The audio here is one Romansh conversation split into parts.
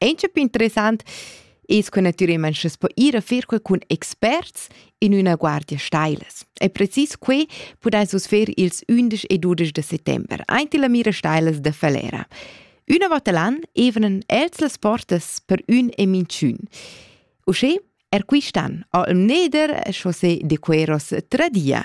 Auncha più interessant es che natüralmaing schi's po ir a fer quel cun experts in üna guardia stailas. E precis que pudais vus fer ils 11 e 12 de settember, aint illa mira stailas da Falera. Üna vota l'an evenen els las portas per ün e minchün. Uschè er quist'an, al Neder, chaussé de Queros tradia.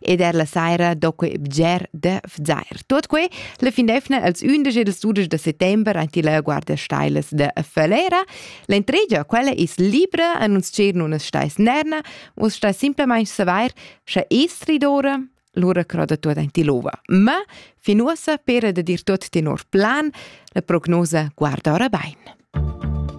ed er la saira do quei bger de vzair. Tot quei la finefna als 11 e 12 de settembre anti la guardia stailes de Fölera. L'entregia quella is libra a non scer nun stais nerna, vos stai simplemente saver sche estri d'ora lura croda tot anti l'ova. Ma fin uossa pera de dir tot tenor plan, la prognosa guarda ora bain.